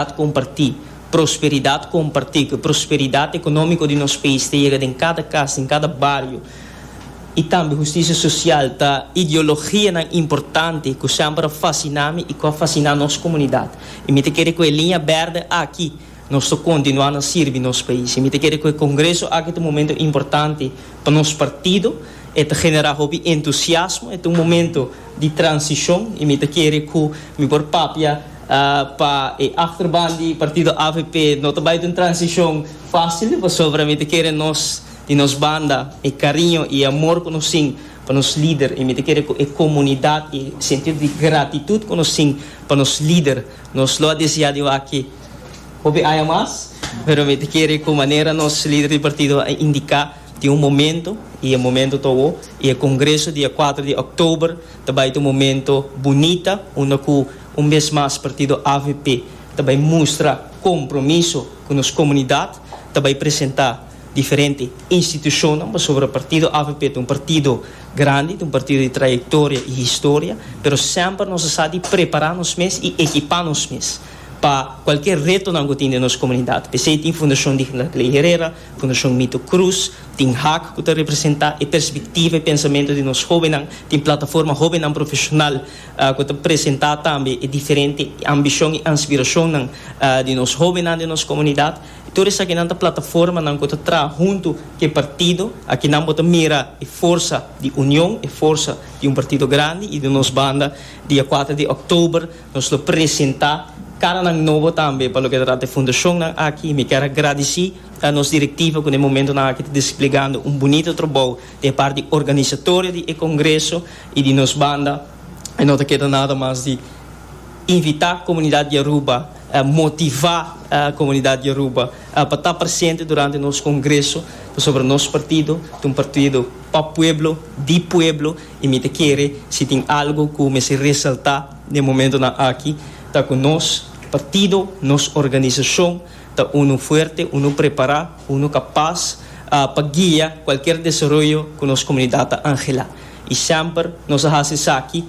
Prosperidad comparti, Prosperidad comparti cu prosperidad economico di nos pais ta yega den cada cas, den cada bario y tambe justicia social ta ideologianan importante cu semper a fascina mi y cu a fascina nos comunidad y mi ta kere cu e liña berde aki nos ta continua na sirbi nos pais y mi ta kere cu e congreso aki ta un momento importante pa nos partido, e ta genera hopi entusiasmo, e ta un momento di transicion y mi ta kere cu mi por papia. Pa e achterban di partido avp no ta bai den transicion facil pasobra mi ta kere nos di nos banda e cariño y e amor cu nos tin pa nos lider y mi ta kere cu e comunidad y sentido di gratitud cu nos tin pa nos lider nos lo a desea di wak hopi aña mas pero mi ta kere cu manera nos lider di partido a indica tin un momento y e momento ta awo y e congreso dia cuater di october ta bai ta un momento bunita unda cu Un bes mas partido avp ta bay mustra compromiso cu nos comunidad, ta bay presenta diferente institucionnan, pasobra partido avp ta un partido grandi, ta un partido di trayectoria y historia, pero semper nos a sa di prepara nos mes y ekipa nos mes pa cualkier retonan cu tin den nos comunidad. Pesey tin Fundacion Digna Clay Herrera, Fundacion Mito Cruz, tin hac cu ta representa e perspectiva y pensamento di nos hobennan, tin plataforma Hobennan Profesional, ku ta presentá tambe e diferente ambishon i anspirashonnan di nos hóbennan den nos komunidat. Tur esakinan ta plataformanan ku ta traha huntu ku e partido. Aki nan bo ta mira e forsa di union, e forsa di un partido grandi. I den nos banda, dia kuater di òktober nos lo presentá karanan nobo tambe pa loke ta trata e fundashonnan aki. Mi kier a gradisí nos direktiva ku den momentunan aki ta desplegando un bunito trabou E parti organisatoria di e congreso y di nos banda no ta keda nada mas di invita comunidad di Aruba, motiva comunidad di Aruba pa ta presente durante nos congreso pasobra nos partido ta un partido pa pueblo, di pueblo y mi ta kere si tin algo cu mester resalta den momentonan aki ta cu nos partido, nos organisacion ta uno fuerte, uno prepara. Uno kapas pa guia kualker desaroyo ku nos komunidat a anhela i semper nos a hasi esaki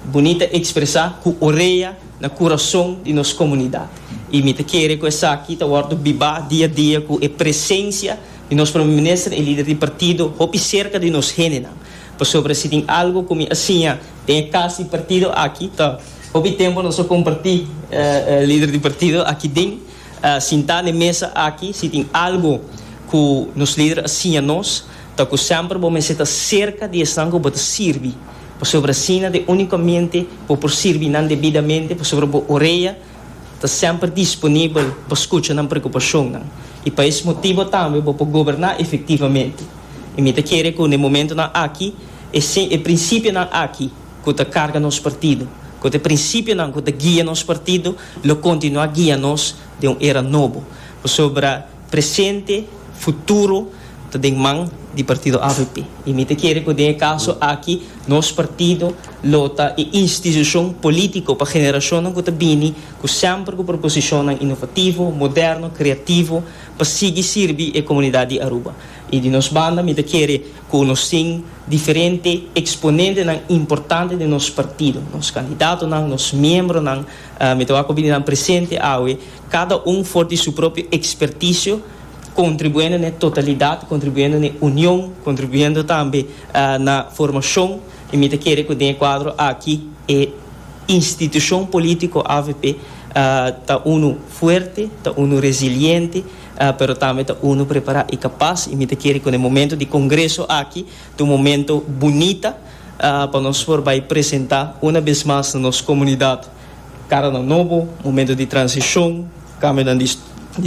bunita ekspresá ku orea na kurason di nos komunidat. I mi ta kere ku esaki ta wòrdu bibá dia dia ku e presensia di nos Prome Minister, e lider di partido hopi serka di nos hendenan. Pasobra si tin algu ku mi a siña den e kas di partido aki ta hopi tempu nos a kompartí lider di partido aki den. a sintá n'e mesa aki, si tin algu ku nos lider a siña nos, ta ku semper bo mester ta serka di esnan ku bo ta sirbi, pasobra asina ta e úniko mente bo por sirbi nan debidamente, pasobra bo orea ta semper disponibel pa skucha nan preokupashonnan. I pa es motibu tambe bo por goberná efektivamente. I mi ta kere ku n'e momentunan aki, e e prinsipionan aki, ku ta karga nos partido, ku ta e prinsipionan ku ta guia nos partido, lo kontinuá guia nos den un era nobo. Pasobra presente, futuro ta den man di partido avp. I mi ta kere ku den e kaso aki nos partido lo ta e institushon polítiko pa generashonnan ku ta bini, ku semper ku proposishonnan inovativo, moderno, kreativo pa sigui sirbi e komunidat di Aruba. I di nos banda mi ta kere ku nos tin. Diferente exponentenan importante den nos partido, nos candidatonan, nos miembronan, mi ta wak cu bininan presente awe, cada un for di su propio experticio, contribuendo na e totalidad, contribuendo na e union, contribuendo tambe na formacion, y mi ta kere cu den e cuadro aki e institucion politico avp ta unu fuerte, ta unu resiliente. Pero tambe ta unu prepará i kapas i mi ta kere kua e momento di kongreso aki ta un momento bunita pa nos por bai presentá una bes mas na nos komunidat karanan nobo, momento di transishon, kambionan di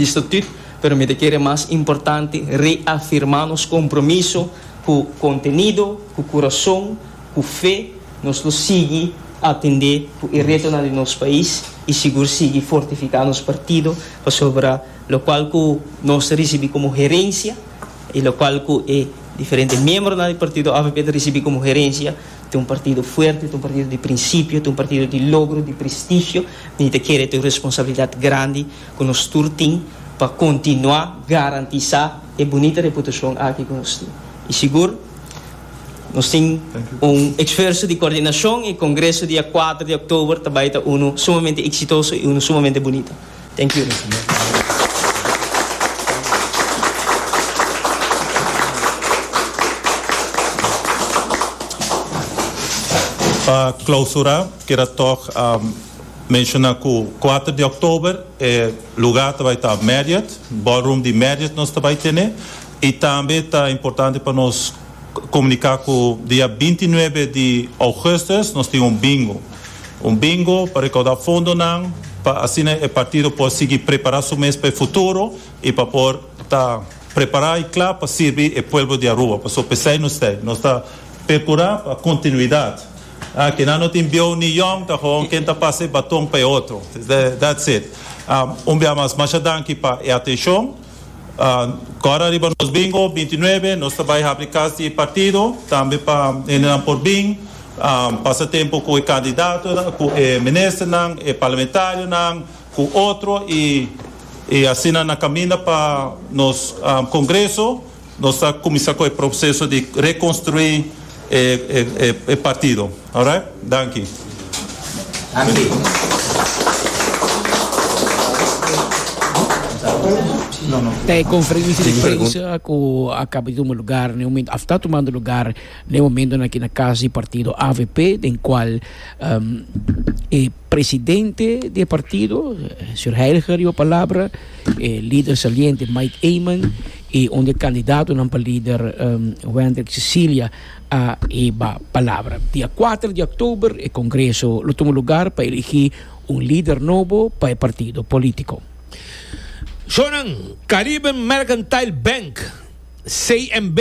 estatut, pero mi ta kere mas importante reafirmá nos kompromiso ku kontenido, ku kurason. Ku fe nos lo sigui atendé ku e retonan di nos pais i sigur sigui fortifiká nos partido pasobra lokual ku nos ta risibí komo herensia i lokual ku e diferente miembronan di partido avp ta risibí komo herensia ta un partido fuerte, ta un partido di prinsipio, ta un partido di logro, di prestigio. Mi ta kere ta un responsabilidat grandi ku nos tur tin pa kontinuá garantisá e bunita reputashon aki ku nos tin i sigur. Nos tin un esfuerso di coordinacion y congreso dia cuater di october ta bay ta uno sumamente exitoso y uno sumamente bunito. Thank you. Pa clausura kier a toch a menciona cu cuater di october e lugar ta bay ta Marriot, ballroom di Marriot nos ta bay tene. I tambe ta importante pa nos komuniká ku dia binti nuebe di ougùstùs nos tin un bingo. Un bingo pa rekaudá fondonan pa asina e partido por sigui prepará su mes pa e futuro i pa por ta prepará i kla pa sirbi e pueblo di Aruba. Pasobra p'esei nos ta ei. Nos ta perkurá pa kontinuidat. Kinan no tin bieu ni yòn ta gewoon ken ta pasa e baton pa e otro. That's it. Un bia mas, masha danki pa e atenshon. Kòrda riba nos bingo binti nuebe, nos ta bai habri kas di e partido, tambe pa hendenan por bin pasa tempu ku e kandidatonan, ku e ministernan, e parlamentarionan, ku otro i asina nan kaminda pa nos kongreso. Nos ta kuminsá ku e proseso di rekonstruí e e partido. Alright. Danki. Ta e konferensia di prensa ku a kaba di tuma lugar na e momentu a sta tumando lugar na e momentu aki na kas di partido avp den kual e. Presidente di e partido, señor Heiliger riba palabra, e lider saliente Mike Eman y un di e candidatonan pa lider um, Wendrick Cecilia a hiba palabra. Dia kuater di oktober e congreso lo tuma lugar pa eligi un lider nobo pa e partido politico. Shornan, Caribbean Mercantile Bank, CMB,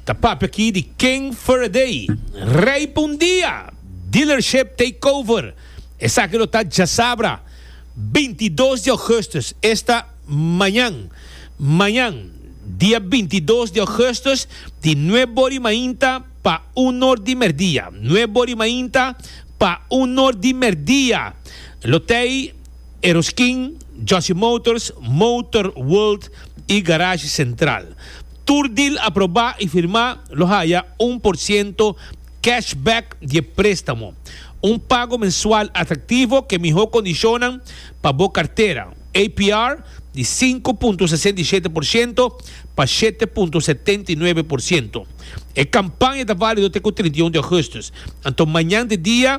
ta papia aki di King Faraday, rey pa un dia! Dealership Takeover, esaki lo ta djasabra, bintidos di ougustus, esta mañan, mañan, dia bintidos di ougustus, di nueb bori mainta pa un or di merdia, nueb bori mainta pa un or di merdia, lo t'ei Eroskin, Jossy Motors, Motor World i Garage Central. Tur deal aprobá i firmá lo haya un por ciento Cashback di e préstamo. Un pago mensual atraktivo ku e mihó kondishonnan pa bo kartera. APR di sinku punto sesenta i shete por shento pa shete punto setenta i nuebe por shento. E kampaña ta válido te ku trinta i un di Ougustus. Anto mañan ta e dia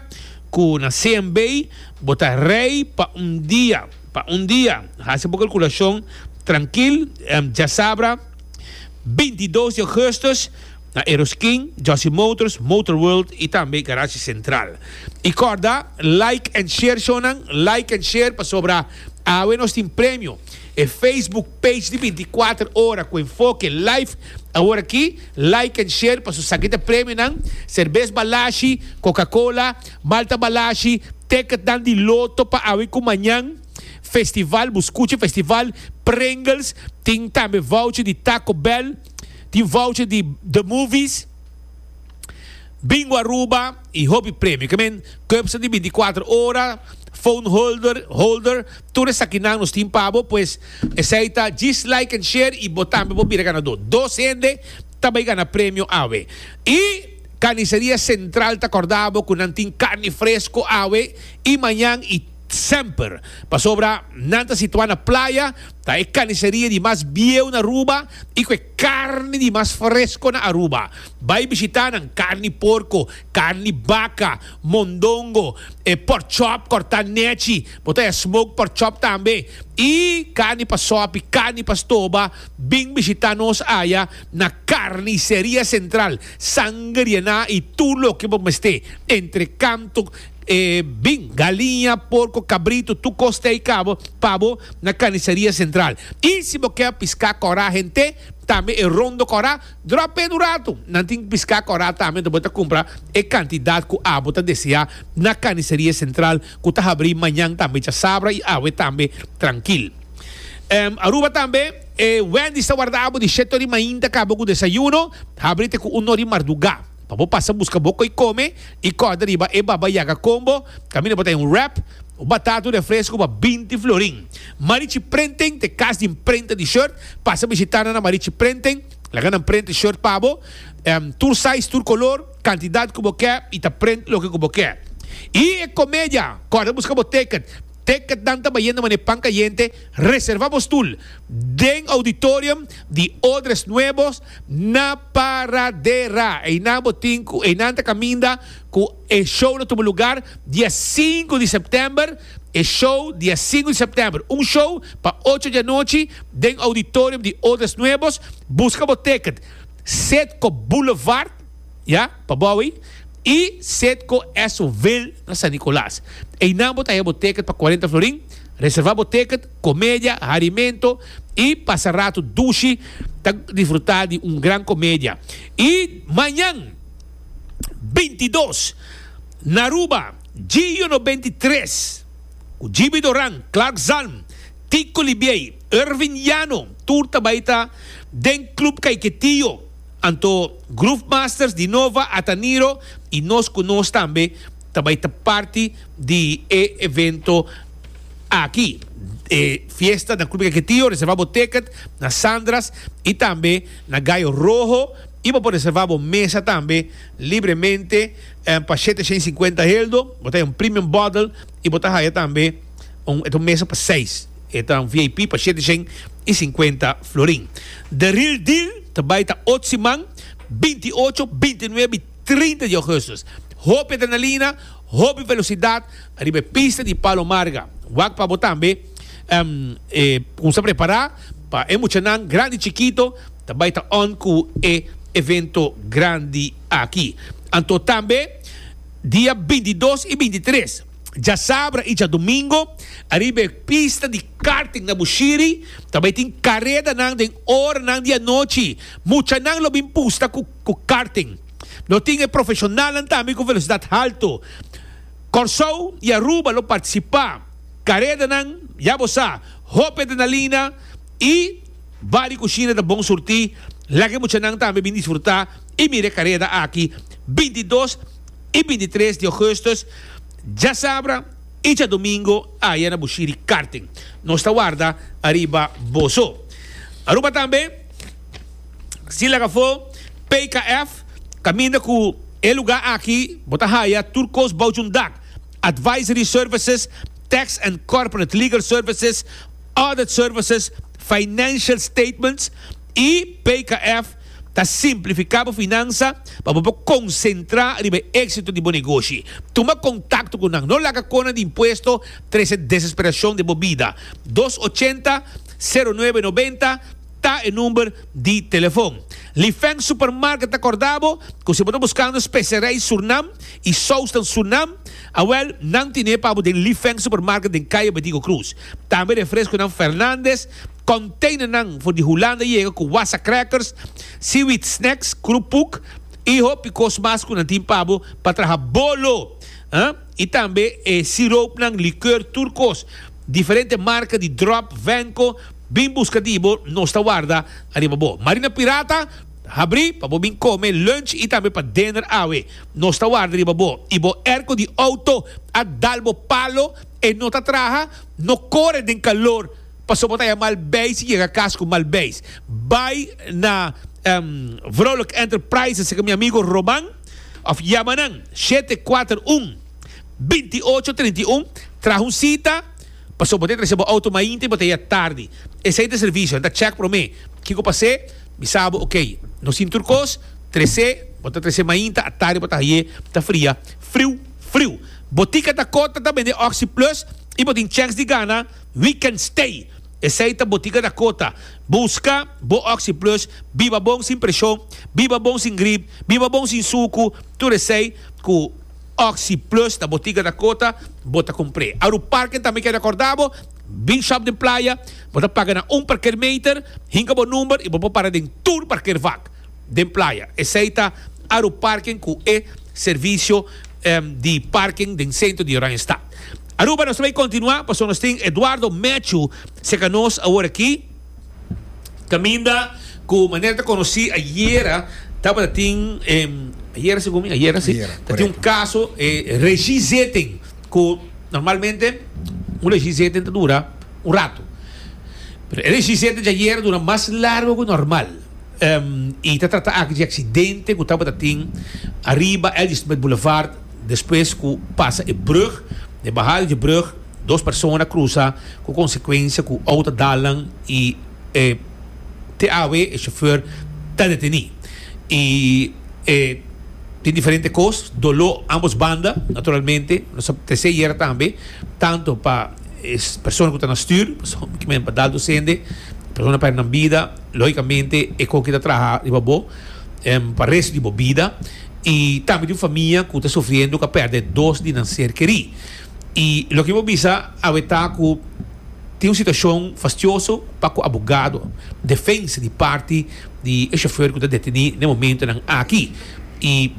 ku na CNB bo ta rei pa un dia, pa un dia. Hasi bo kalkulashon trankil, djasabra binti dos di Ougustus. na Eroskin, Jossy Motors, Motor World y tambe Garage Central. Y corda, like and share shownan, like and share pasobra awe nos tin premio. E Facebook page di binti kuater ora cu enfoke live awor aki, like and share paso sa ki ta premionan, Serbes Balashi, Coca Cola, Malta Balashi, ticketnan di loto pa awe cu mañan, Festival, bu scucha Festival, Pringles, tin tambe voucher di Taco Bell. Tin voucher di The Movies, Bingo Aruba y hopi premio. Ke men Cubsa di binticuater ora, phone holder, holder, tur esakinan nos tin pa bo, pues esey ta djis like and share y bo tambe por bira ganador. Dos hende ta bay gana premio awe. Y Carniceria Central ta corda bo cu nan tin carni fresco awe y mañan y semper. Pasobra nan ta situa na playa. Ta e kaniseria di mas bieu na Aruba y cu e carni di mas fresco na Aruba. Bay bishita nan, carni porco, carni baca, mondongo, e pork chop corta nechi, bo ta ya smoked pork chop tambe y carni pa sopi, carni pa stoba, bin bishita nos aya na Carniceria Central, sangria na y tur loke bo mester, entre kantu, E bin, galiña, porko, kabritu, tur kos te ei kabo pa bo na Kanisaria Sentral. I si bo ke a piská kòrá hent'é, tambe e rondo kòrá, dròp'é un ratu. Nan tin piská kòrá tambe, anto bo ta kumpra e kantidat ku abo ta deseá na Kanisaria Sentral ku ta habrí mañan tambe djasabra i awe tambe trankil. Ehm, Aruba tambe, e Wendy's ta warda abo di shet ori mainta kabo ku desayuno, habrí te ku un nò di mardugá. Pa bo pasa buska bo koe come y corda riba e Baba Yaga combo, caminda bo ta un wrap, un batata, un refresco pa binti florin. Marichi Printing ta e cas di imprenta di shirt. Pasa bishita nan na Marichi Printing, laga nan print e shirt pa bo, tur size, tur color, cantidad cu bo ke y ta print loke cu bo ke. Y e comedia, corda buska bo ticket. Ticket nan ta bayendo manera pan cayente. Reserva bo stoel den auditorium di Odres Nuevos. Na paradera einan bo tin cu einan ta caminda cu e show lo tuma lugar dia sinku di september, e show dia sinku di september, un show pa ocho di anochi den auditorium di Odres Nuevos, busca bo ticket Citgo Boulevard, ya, pa bo awe, y Citgo Esso Ville na San Nicolas. Einan bo ta haya bo ticket pa cuarenta florin, reserva bo ticket. comedia, harimento y pasa rato dushi ta disfruta di un gran comedia. Y mañan bintidos na Aruba, Gio no bintitres, cu Jibi Doran, Clark Zalm, Tico Libiey, Ervin Llano, tur ta bay ta den Club Caiquetío, anto Groove Masters, Dinova, Ataniro y nos cu nos tambe, Ta bai ta parti di e evento aki. E fiesta na Club Caquetío, reserva bo ticket na Sandra's y tambe na Gallo Rojo y bo por reserva bo mesa tambe libremente pa shete shen y cincuenta heldo. Bo ta haya un premium bottle y bo ta haya tambe un, e ta un mesa pa seis, e ta un VIP pa shete shen y cincuenta florin. The real deal ta bai ta otsiman binti ocho, binti nuebe y Trinta di Augustus, hopi adrenalina, hopi velosidad ariba e pista di Palo Marga. Wak pa bo tambe e cuminsa prepara pa e muchanan grandi y chikito ta bay ta on cu e evento grandi aki. Anto tambe dia bintidos y bintitres, djasabra y djadomingo, ariba e pista di karting na Bushiri ta bay tin caredanan den oranan di anochi. Muchanan lo bin pusta cu. cu karting. Lo tin e profesionalnan tambe cu velocidad halto. Corsou y Aruba lo participa. Caredanan, ya bo sa, hopi adrenalina y ba di cushina ta bon surti. Laga e muchanan tambe bin disfruta y mira e careda aki binti dos y binti tres di augustus djasabra y djadomingo aya na Bushiri Karting. Nos ta warda ariba boso. Aruba tambe. Si laga for PKF caminda cu e lugar aki bo ta haya tur cos bouch un dak, advisory services, tax and corporate legal services, audit services, financial statements y PKF ta simplifica bo finansa pa bo por concentra riba e exito di bo negoshi. Tuma contacto cu nan. No laga cona di impuesto trece desesperacion den bo bida. Dos ochenta, zero nuebe noventa. Ta e number di telefon. Lifeng Supermarket ta corda bo cu si bo ta buscando specerijen Surnam y sousnan Surnam, awel, nan tine pa bo den Lifeng Supermarket den Calle Bedigo Cruz. Tambe refresconan Fernandez, containernan for di Hulanda yega cu wassa crackers, seaweed snacks, krupuk y hopi cos mas cu nan tin pa bo pa traha bolo. Y tambe e siroopnan, likeur, tur cos. Diferente marca di drop, venco, bin busca di bo, nos ta warda ariba bo. Marina Pirata, habri pa bo bin come lunch y tambe pa dinner awe. Nos ta warda riba bo. Y bo airco di auto a dal bo palo, e no ta traha, no core den calor pasobra bo ta haya mal beis y yega cas cu mal beis. Bay na Vrouwelijke Enterprises, seke mi amigo Roman. Of yama nan shete kuater un binti ocho trinta i un traha un sita pasobra bo ta trese bo outo mainta i bo ta yega tardi. Esei ta e servisio, nan ta chèk promé kiko pas'é, bisa bo okey. No sin tur kos, trese, bo ta trese mainta, atardi bo ta hañ'é ta fria friu friu. Botika ta kòrta ta bend'é Oxyplus i bo tin chèns di gana Weekend Stay. Esei ta Botica Dakota. Busca bo Oxyplus biba bon sin presion, biba bon sin grip, biba bon sin sucu, tur esei cu Oxyplus na Botica Dakota bo ta cumpre. Aru parken tambe keda corda bo, Big Shop den Playa, bo ta paga na un parkeermeter, hinca bo number y bo por para den tur parkeervak. Den playa. Esei ta Aruparken ku e servisio di parken den sentro di Oranjestad. Aruba nos ta bai kontinuá pasobra nos tin Eduardo Matthew serka nos awor aki, kaminda ku manera ta konosí ayera tabata tin ayera segun mi ayera si ta tin un kaso e regizeten ku normalmente un regizeten ta dura un ratu pero e regizeten di ayera dura mas largu ku normal. I ta trata aki di e aksidente ku tabata tin ariba Ladysmith Boulevard despues ku pasa e brug. Na e bahada di e brug dos persona a krusa ku konsekuensia ku outo a dalan i e TAW e shofèr ta detení. I e tin diferente kos, doló ámbos banda naturalmente, nos ta tresé yera tambe tantu pa e persona ku ta na stür, pasobra kimen pa daltu sende, persona pèrdè nan bida. Logicamente e con ki ta traha riba bo pa resto di bo bida y tambe tin famia cu ta sufriendo cu a perde dos di nan ser keri y loke mi bo bisa awe ta cu tin un situacion fastioso pa cu abogado defensa di parti di e chauffeur cu ta deteni n'e momentonan aki y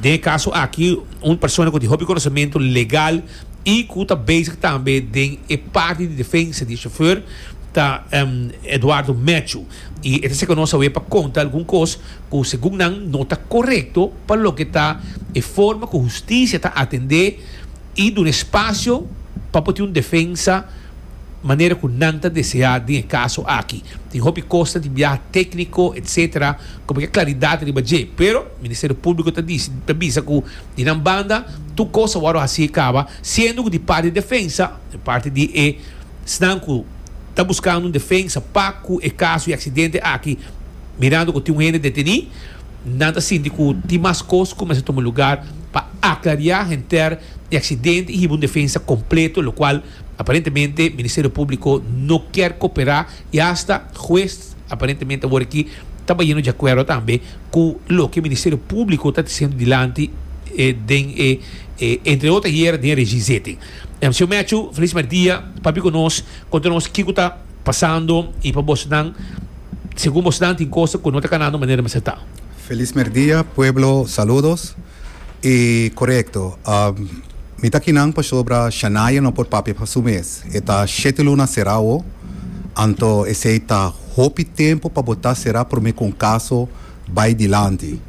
den e caso aki un persona cu tin hopi conocemento legal. y cu ta bezig tambe den e parti di defensa di e chauffeur ta Eduardo Matthew y e ta seca nos awe pa conta algun cos cu segun nan no ta corecto pa loke ta e forma cu husticia ta atende y duna espacio pa por tin un defensa manera cu nan ta desea den e caso aki. Tin hopi cosnan, tin biaha tecnico etc. Como ke claridad riba dje pero Ministerio Publico ta dici ta bisa cu. Di nan banda, tur kos a wòrdu hasi kaba, siendo ku di parti defensa, di parti di esnan ku ta buskando un defensa pa ku e kaso i aksidente aki, mirando ku tin un hende detení, nan ta sinti ku tin mas kos ku mester tuma lugar pa aklariá henter e aksidente i hiba un defensa kompleto, lokual aparentemente Ministerio Públiko no kier koperá. I hasta hues aparentemente awor aki ta bayendo di akuerdo tambe ku loke Ministerio Públiko ta disiendo dilanti den e entre otro ayer den e regi zeten. Em, Señor Matthew, felis merdia, papia ku nos, konta nos kiko ta pasando i pa bosnan, segun bosnan tin kos ku no ta kanando manera mester ta. Feliz merdia pueblo saludos y corecto mi ta kinan pasobra Shania no por papia pa su mes e ta shete luna cera awo anto esey ta hopi tempo pa bo ta cera prome con caso bay dilanti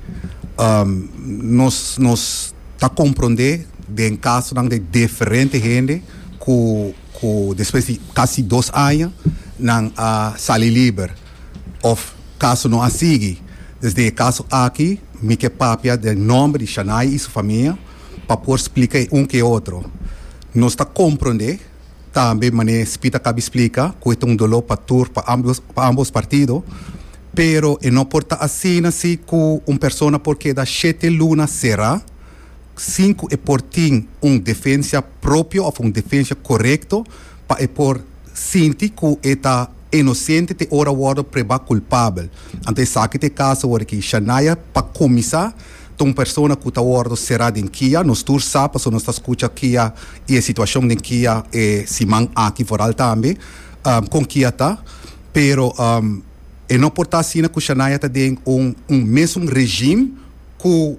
nos nos ta compronde den casonan de deferente hende cu cu despues di casi dos aña nan a sali liber. Of kaso no a sigui desde e kaso aki mi ke papia den nòmber di Shanai i su famia pa por splika e un ku e otro. Nos ta komprondé tambe manera e Spita kabi splika ku e ta un doló pa tur pa ambos pa ambos partido pero e no por ta asina si ku un persona por keda shete luna será sin ku e por tin un defensia propio òf un defensia korekto pa e por sinti ku e ta inosente te ora wòrdu prebá kulpabel. Anto esaki ta e kaso orakí Shania. Pa kuminsá, ta un persona ku ta wòrdu será den kia. Nos tur sa, pasobra nos ta skucha kia i e situashon den kia e siman aki foral tambe, kon kia ta. Pero e no por ta asina ku Shania ta den un mesun rejim ku.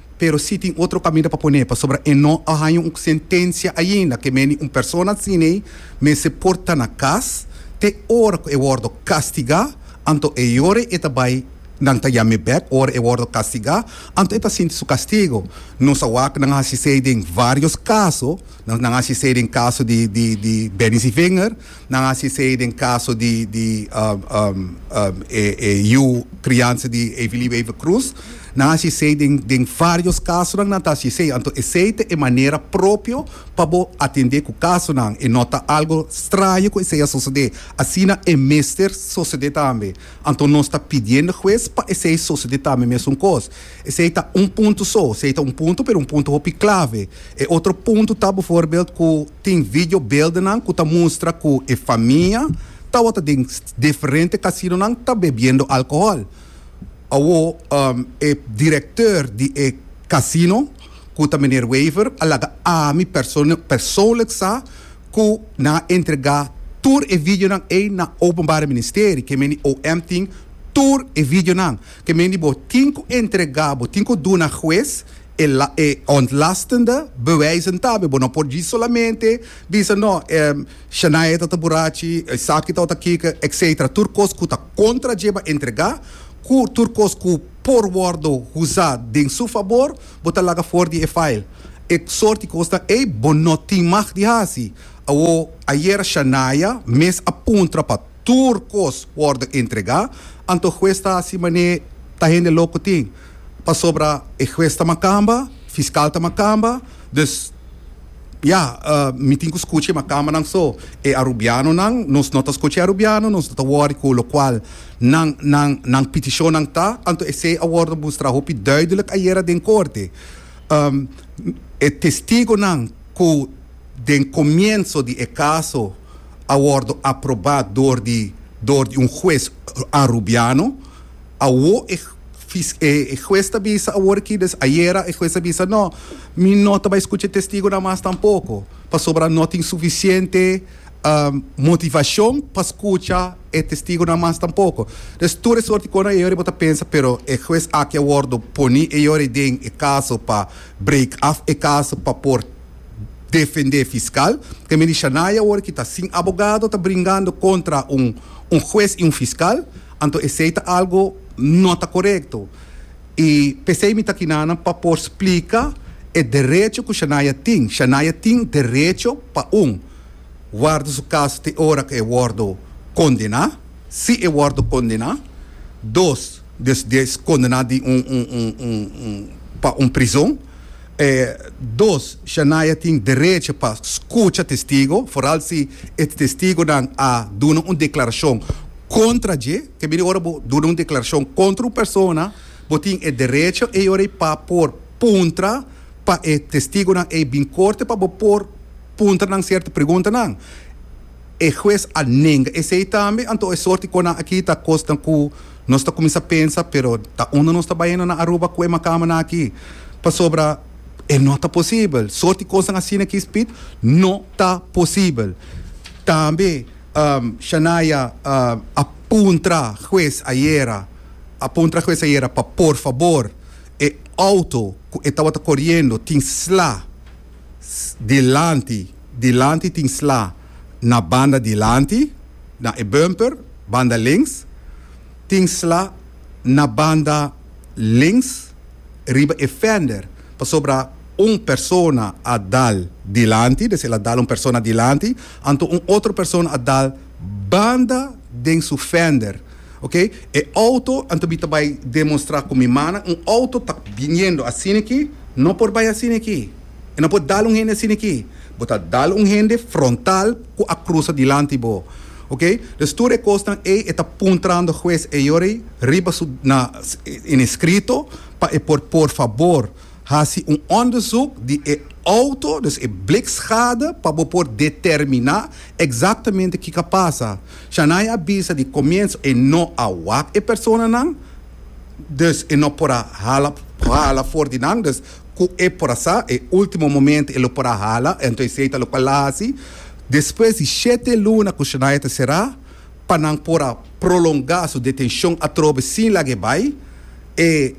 Pero si tin otro caminda pa pone, pasobra e no a haña un sentencia ainda, que meni un persona asiney mester por ta na cas te ora cu e wordo castiga, anto e yore e ta bay nan ta yam'e bek ora e wordo castiga, anto e ta sinti su castigo. Nos a wak nan hacisey den varios caso, nan hacisey den caso di Benny Zivinger, Nan hasi esei den kaso di e yu kriansa di Evilio Eva Cruz. Nan hasi esei den vários kasonan nan ta hasi esei. Anto esei ta e manera propio pa bo atendé ku kasonan. E no ta algu straño ku esei a sosodé. Asina e mester sosodé tambe. Anto nos ta pidiendo hues pa esei sosodé tambe mesun kos. Esei ta un punto so, esei ta un punto pero un punto hopi clave. E otro punto ta bevoorbeeld cu tin video beeldennan cu ta mustra cu e famia tawata den diferente casinonan ta bebiendo alcohol. Awo e directeur di e casino cu ta meneer Wever a laga ami persoonlijk sa cu nan a entrega tur e videonan ey na Openbare Ministerie, ke meni OM tin tur e videonan. Te men di bo tin ku entregá bo, tin ku duna hues e e ontlastende bewijzen ta. Bo no por djis solamente bisa no ehm Shania ta ta burachi, esaki ta ota kiko etcetera. Tur kos ku ta kontra djeba entregá, ku tur kos ku por wòrdu huzá den su fabor, bo ta laga for di e file. E sort di kosnan ei bo no tin mag di hasi. Awo ayera Shania mes a puntra pa. tur kos wordo entrega, anto hues ta haci mane ta hende loco tin, pasobra e hues ta macamba, fiscal ta macamba, dus ya, mi tin cu scucha e macambanan so, e Arubianonan, nos no ta scucha e Arubiano, nos no ta worry cu locual nan, nan, nan peticionnan ta, anto esey a wordo mustra hopi duidelijk ayera den corte, e testigonan cu. Den comienso di e caso a wordo aproba door di door di un huez Arubiano. Awo e e huez ta bisa awor aki des ayera e huez ta bisa no mi no ta bay scucha e testigonan mas tampoco pasobra no tin suficiente motivacion pa scucha e testigonan mas tampoco. Des tur e soort di cosnan eyor bo ta pensa pero e huez aki a wordo poni eyor den e caso pa break af e caso pa por defendé fiskal. Te mindi Shania awor ki ta sin abogado ta bringando kontra un un hues i un fiskal. Anto esei ta algo no ta korekto. I p'esei mi ta kina nan pa por splika e derecho ku Shania tin. Shania tin derecho pa un warda su kaso te ora ku e wòrdu kondená, si e wòrdu kondená. Dos, des di e kondená di un un un un pa un prizon. E dos, Shania tin derecho pa scucha testigo, foral si e testigonan a duna un declaracion contra dje. Te bini ora bo duna un declaracion contra un persona, bo tin e derecho ei ora ei pa por puntra pa e testigonan ei bin corte pa bo por puntra nan cierto preguntanan. E hues a nenga esei tambe. Anto e sort di konan aki ta kosnan ku nos ta kuminsá pensa, pero ta unda nos ta baina na Aruba ku e makamanan aki? Pasobra e no ta posibel. Sort di kosnan asina aki, Speed, no ta posibel. Tambe Shania a puntra hues ayera, a puntra hues ayera pa por fabor e outo ku e tabata koriendo tin sla dilanti. Dilanti tin sla na banda dilanti, na e bumper, banda links. Tin sla na banda links riba e fender pasobra un persona a dal dilanti, des el a dal un persona dilanti, anto un otro persona a dal banda den su fender. Ok, e auto, anto mi ta bai demonstra ku mi mana, un auto ta biniendo asiniki, no por bai asiniki. E no por dal un hende asina aki. Bo ta dal un hende frontal cu a crusa dilanti bo. Ok? Pues tur e cosnan ey e ta puntrando hues Ayory riba su na en escrito pa e por por fabor haci un onderzoek di e auto, dus e blikschade, pa bo por determina exactamente kico a pasa. Shania a bisa di comienzo e no a wak e personanan, dus e no por a hala hala for di nan. Dus. Ku e por a sa e último momento e lo por a hala, anto esei ta loke el a hasi. Despues di shete luna ku Shania ta será pa nan por a prolongá su detenshon atrobe sin laga e bai, e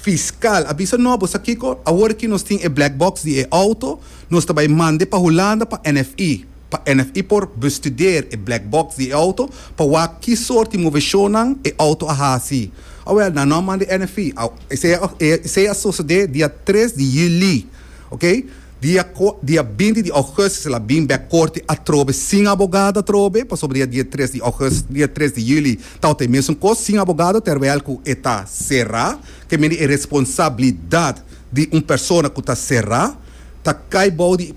fiskal a bisa, No, bo sa kiko? Awor aki nos tin e black box di e outo, nos ta bai mande pa Hulanda pa NFI. pa NFI por bestudeer e black box di e auto pa wak ki sort di moveshonnan e auto a hasi. Awel, na norm man di NFI, esei a sosode dia tres di juli, ok, dia binti di ougustus el a bin bek korte atrobe sin abogado atrobe, pasobra dia dia tres di ougustus, dia tres di juli tabata e mesun kos, sin abogado, terwel ku e ta sera, ke mende e responsabilidat di un persona ku ta sera. ta kai bou di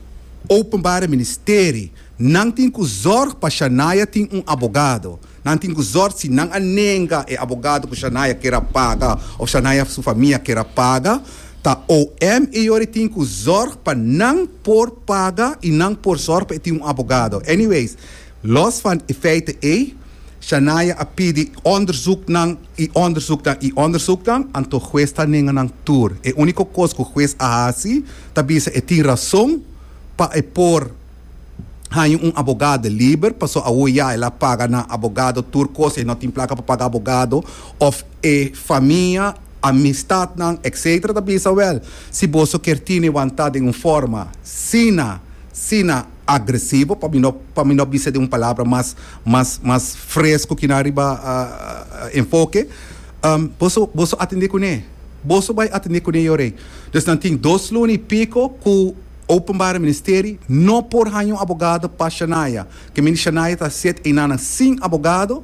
Openbare Ministeri. Nan tin ku zòrg pa Shania tin un abogado. Nan tin ku zòrg si nan a nenga e abogado ku Shania kere a paga òf Shania su famia kere a paga, ta OM e yori tin ku zòrg pa nan por paga i nan por zòrg pa e tin un abogado. Anyways. Los van e feite ey, Shania a pidi onderzoeknan y onderzoeknan y onderzoeknan, anto hues ta nenga nan tur. E unico cos cu hues a haci ta bisa e tin razon pa e por haña un abogado liber, paso awo ya el a paga na abogado tur cos y e no tin placa pa paga abogado, of e famia, amistadnan, etc. Ta bisa wel, si boso kier tine wanta den un forma, sina, sina. agresivo pa mi no pa mi no bisa den un palabra mas mas mas fresco kina riba enfoke boso boso atende kune boso bai atende kune yo rei dus nan tin dos luna y pico ku openbare ministeri no por haña un abogado pa Shania kemi di Shania ta siet enanan sin abogado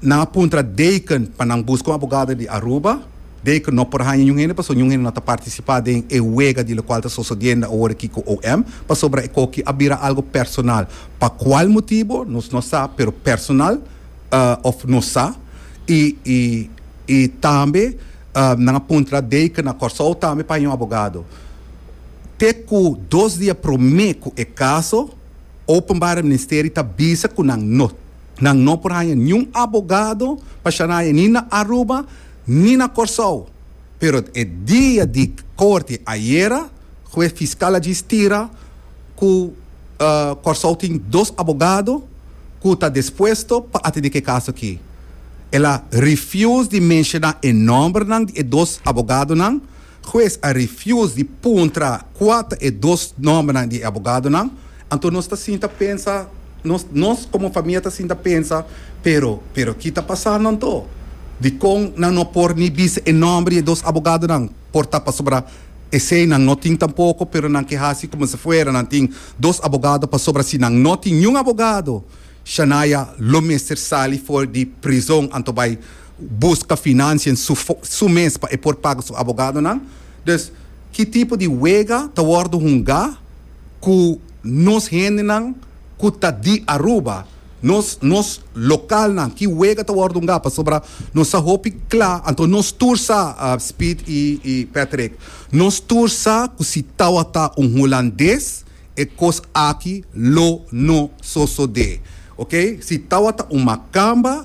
nan a puntra Deken pa nan buska un abogado di Aruba. Dei cu no por haña niun hende pasobra niun hende no ta participa den e wega di locual ta sosodiendo awor aki cu OM, pasobra e coki a bira algo personal. Pa cual motibo nos no sa, pero personal of nos sa y y y tambe nan a puntra dei cu na Corsou tambe pa haña un abogado. Te cu dos dia prome cu e caso, Openbare Ministeri ta bisa cu nan no, nan no por haña niun abogado pa shanaya ni na Aruba ni na Kòrsou, pero e dia di korte ayera ku e fiskal a djis tira ku Kòrsou tin dos abogado ku ta dispuesto pa atendé ku e kaso aki. El a refuse di menshoná e nòmbernan di e dos abogadonan. Hues a refuse di puntra cua ta e dos nombernan di e abogadonan. Anto nos ta sinta pensa, nos nos como famia ta sinta pensa, pero pero ki ta pasando anto? Dicon nan no por ni bisa e nomber di e dos abogadonan? Por ta pasobra esey nan no tin tampoco, pero nan ke haci como si fuera nan tin dos abogado pasobra si nan no tin niun abogado Shania lo mester sali for di prizon anto bay buska finansien su mes pa e por paga su abogadonan. Dus ki tipo di wega ta wòrdu hunga ku nos hendenan ku ta di Aruba, nos nos lokalnan? Ki wega ta wòrdu hunga pasobra nos sa hopi kla? Anto nos tur sa, Speed i Patrick, nos tur sa ku si tawata un hulandes e kos aki lo no sosodé. Oke, si tawata un makamba.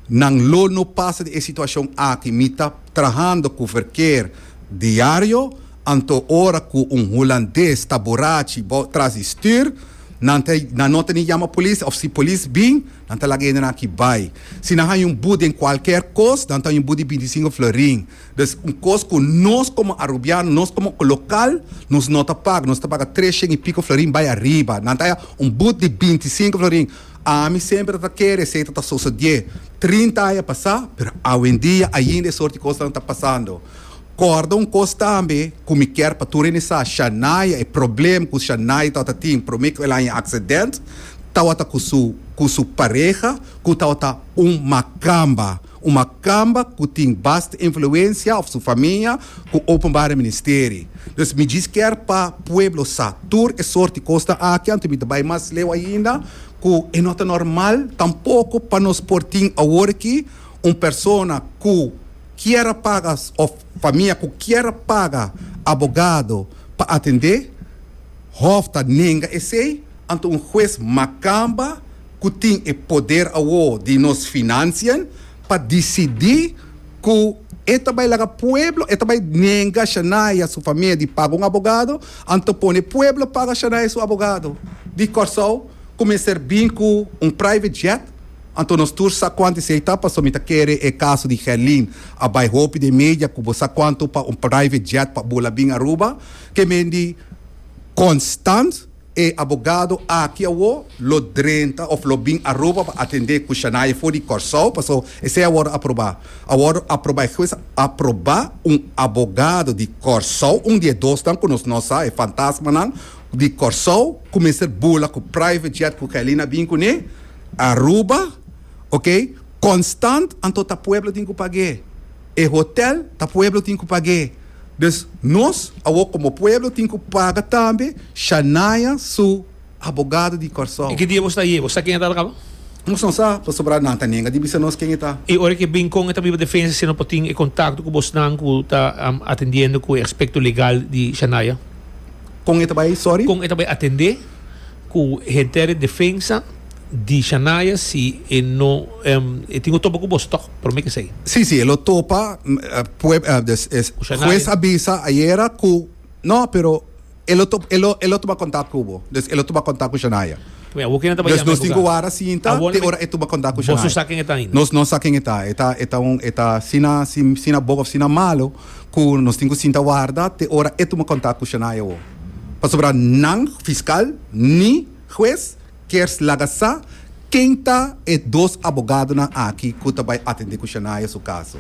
Nan lo no pasa di e situacion aki. Mi ta trahando cu verkeer diario, anto ora cu un Hulandes ta borachi bou tras di stuur, nan ta, nan no ta ni yama polis, of si polis bin, nan ta laga hende nan aki bay. Si nan haña un bu den cualkier cos, nan ta haña un bu di bintisinco florin. Dus, un cos cu nos como Arubiano, nos como local, nos no ta paga, nos ta paga tres shen y pico florin bay ariba. Nan ta haña un bu di bintisinco florin. Ami semper ta kere esey ta ta sosodié trinta aña pasá, pero awendia ainda e sort di kosnan ta pasando. Kòrda un kos tambe ku mi kier pa tur hende sa, Shania, e problem ku Shania tabata tin promé ku el haña e aksident, tabata ku su ku su pareha ku tabata un makamba. Un makamba ku tin basta influensia òf su famia ku Openbare Ministeri. Dus mi djis kier pa pueblo sa tur e sort di kosnan aki anto mi ta bai mas leu ainda ku e no ta normal tampoko pa nos por tin awor aki un persona ku kier a paga òf famia ku kier a paga abogado pa atend'é. Hòf ta nenga esei anto un hues makamba. ku tin e poder awor di nos finansian pa disidí ku e ta bai laga pueblo, e ta bai nenga Shania su famia di paga un abogado, anto pone pueblo paga Shania su abogado di Kòrsou ku mester bin ku un private jet. Anto nos tur sa kuantu esei ta, pasobra mi ta kere e kaso di Gerlin a bai hopi den media ku bo sa kuantu pa un private jet pa bula bin Aruba, ke men di konstant. E abogado aki awo lo drenta of lo bin Aruba pa atendé ku Shanaye for di Kòrsou, paso esei a wòrdu aprobá. A wòrdu aprobá, e hues a aprobá un abogado di Kòrsou, un di e dosnan ku nos no sa, e fantasmanan di Kòrsou ku mester bula ku private jet ku Kylin a bin kuné Aruba, okay? Konstant anto ta pueblo tin ku pag'é. E hotèl ta pueblo tin ku pag'é. Des nos awo komo pueblo tin ku paga tambe Shania su abogado di Kòrsou. I ki dia bo sta ye? Bo sa ken e ta ta kaba? Nos no sa, pasobra nan ta nenga di bisa nos ken e ta. I ora ke bin kon e ta biba defensa si no por tin e kontakto ku bosnan ku ta atendiendo ku e aspekto legal di Shania? Kon e ta bai? Sòri? Kon e ta bai atende ku henter e defensa? Di Shania si e no e tin ku topa ku bos tòg promé ke esei. Sí sí e lo topa hues a bisa ayera ku no pero e lo e lo e lo tuma kontak ku bo dus e lo tuma kontak ku Shania dus nos tin ku wara sinta te ora e tuma kontak ku Shania nos no sa ken e ta e ta e ta un e ta sina sina bo òf sina malu ku nos tin ku sinta warda te ora e tuma kontak ku Shania pasobra nan fiskal ni hues. Kers laga sa ken ta e dos abogadonan aki ku ta bai atendé ku Shania su kaso.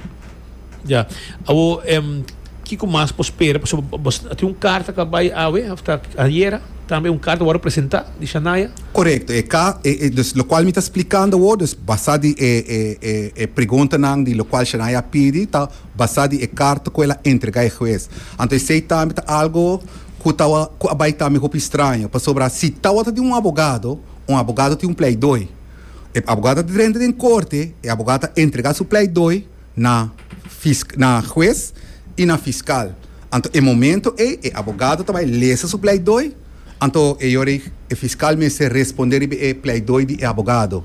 Ya. Awor em kiko mas por spera pasobra bo bo tin un karta ku a bai awe òf ta ayera, tambe un karta ku wòrdu presentá di Shania? Korekto, e ka e e dus lokual mi ta splikando awor, dus basá di e e e e preguntanan di lokual Shania a pidi ta. basá di e karta ku el a entregá e hues. Anto esei tambe ta algu ku ta ku a bai tambe hopi straño, pasobra si tawater tin un abogado, un abogado tin un pleidooi. E abogado ta drenta den korte, e abogado ta entregá su pleidooi na fis na hues i na fiskal. Anto e momento ei e abogado ta bai lesa su pleidooi, anto e yora ei e fiskal mester respondé riba e pleidooi di e abogado.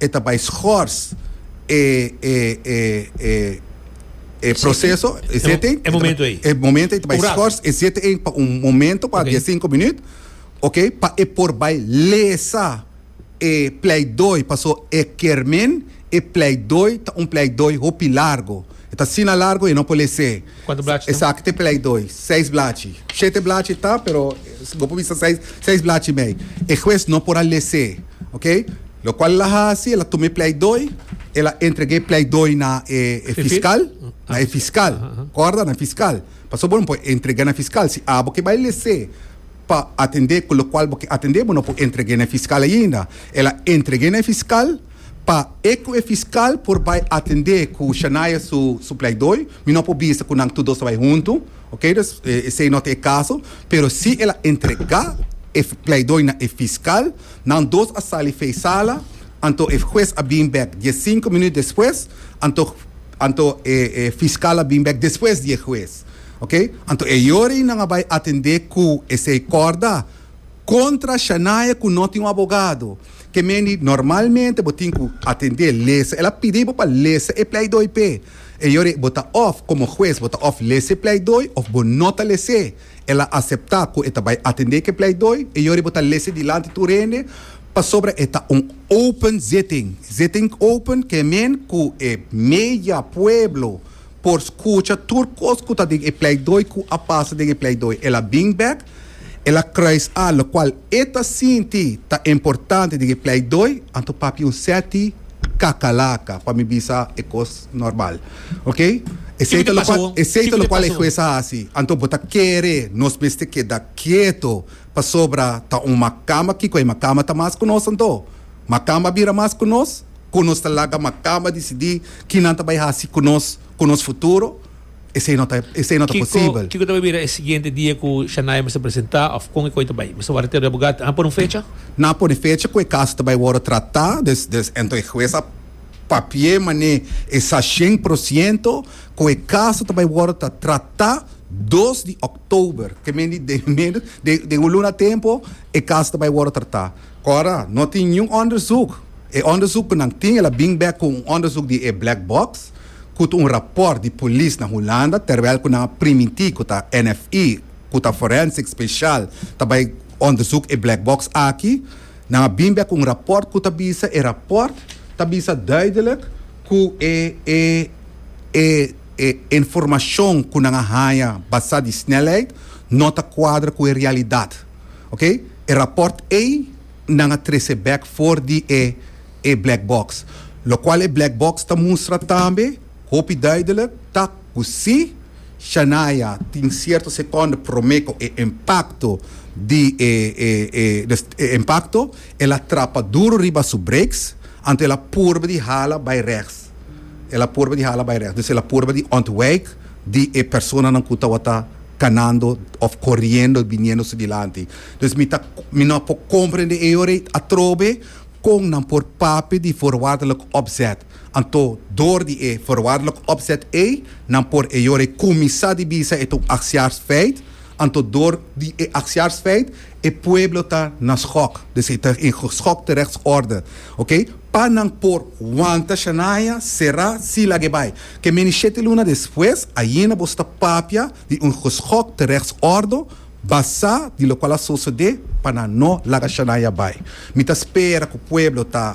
E ta bai schors e e e e e proceso, e zitting. E momento ei. E momento ei ta bai schors e zitting ei pa un momento, pa dies sinku minuut, oké, pa e por bai lesa e pleidooi, paso e kermin e pleidooi ta un pleidooi hopi largo. E ta asina largo e no por les'é. Kuantu blachi ta? Esaki ta e pleidooi, seis blachi. Shete blachi ta, pero bo por bisa seis, seis blachi mei. E hues no por a les'é. Oke, lokual el a hasi, el a tuma e pleidooi, el a entrega e pleidooi na e fiskal, na e fiskal, kòrda? Na e fiskal. Pasobra bo no por entrega na e fiskal, si abo ke bai lese pa atende ku lokual bo ke atende, bo no por entreg'é na e fiskal ainda. El a entreg'é na e fiskal pa e ku e fiskal por bai atende ku Shania su pleidooi. Mi no por bisa ku nan tur dos ta bai huntu. Oke, dus esei no ta e kaso, pero si el a entregá e pleidoi na e fiskal, nan dos a sali fei sala, anto e hues a bin bèk die sinku minüt despues, anto anto e e fiskal a bin bèk despues di e hues. Oke, anto e yorin nan a bai atendé ku esei kòrda kontra Shania ku no tin un abogado. Ke mean di normalmente bo tin ku atendé lesa, el a pidi bo pa lesa e pleidoi p'e. E yori bo ta òf komo hues bo ta òf lese pleidooi òf bo no ta lese. El a aseptá ku e ta bai atendé ku e pleidooi. E yori bo ta lese dilanti tur hende pasobra e ta un open zitting. Zitting open ke men ku e media pueblo por skucha tur kos ku ta den e pleidooi ku a pasa den e pleidooi. El a bin bèk. El a kruis al, lokual e ta sinti ta importante den e pleidooi, anto papia un seti kakalaka pa mi bisa e kos normal. Ok? Esei ta lokual esei ta lokual e hues a hasi, anto bo ta kere nos mester keda kieto pasobra ta un makamba kiko e makamba ta mas ku nos anto? Makamba a bira mas ku nos? Ku nos ta laga makamba disidi kinan ta bai hasi ku nos ku nos futuro? esei no ta posibel. Kiko ta bai bira e siguiente dia ku Shania mester presentá òf kon e koi ta bai? Mester wòrdu te reabogá? Nan a pone un fecha? Nan a pone fecha ku e kaso ta bai wòrdu tratá, des des anto e hues a papi'é manera e sa shen por siento ku e kaso ta bai wòrdu ta tratá dos di òktober. Ke men di den menos den un luna tempu e kaso ta bai wòrdu tratá. Kòrda, no tin niun òndersuk. E òndersuk ku nan tin el a bin bèk ku un òndersuk di e black box. Kut un raport di polis na Hulanda terwel ku nan a primintí ku ta NFI ku ta Forensic Special ta bai onderzoek e black box aki, nan a bin bek ku un raport ku ta bisa e raport ta bisa duidelek ku e e e e informashon ku nan a haña basá di snelheid no ta kuadra ku e realidat. Oké, e raport ei. nan a trece bek for di e e black box, locual e black box ta mustra tambe hopi duidelijk ta cu si Shania tin cierto seconde prome cu e impacto di e e e dus e impacto el a trapa duro riba su brakes anto el a purba di hala bay rechts el a purba di hala bay rechts dus el a purba di ontwijk di e personanan cu tawata canando of coriendo biniendo su dilanti. Pues mi ta mi no por comprende e ora ei atrobe con nan por papia di voorwaardelijk opzet. Anto door di e voorwaardelijk opzet ei nan por e ora ei cuminsa di bisa e ta un acciaarsfeit, anto door di e acciaarsfeit e pueblo ta na schok, dus e ta in geschokte rechtsorde, ok. Pa nan por wanta Shania, Sera, Sila ge bai. Ke meni shete luna despues ayina boso ta papia di un geschokte rechtsorde, Basá di lokual a sosodé pa nan no laga Shania bai, mi ta spera ku pueblo ta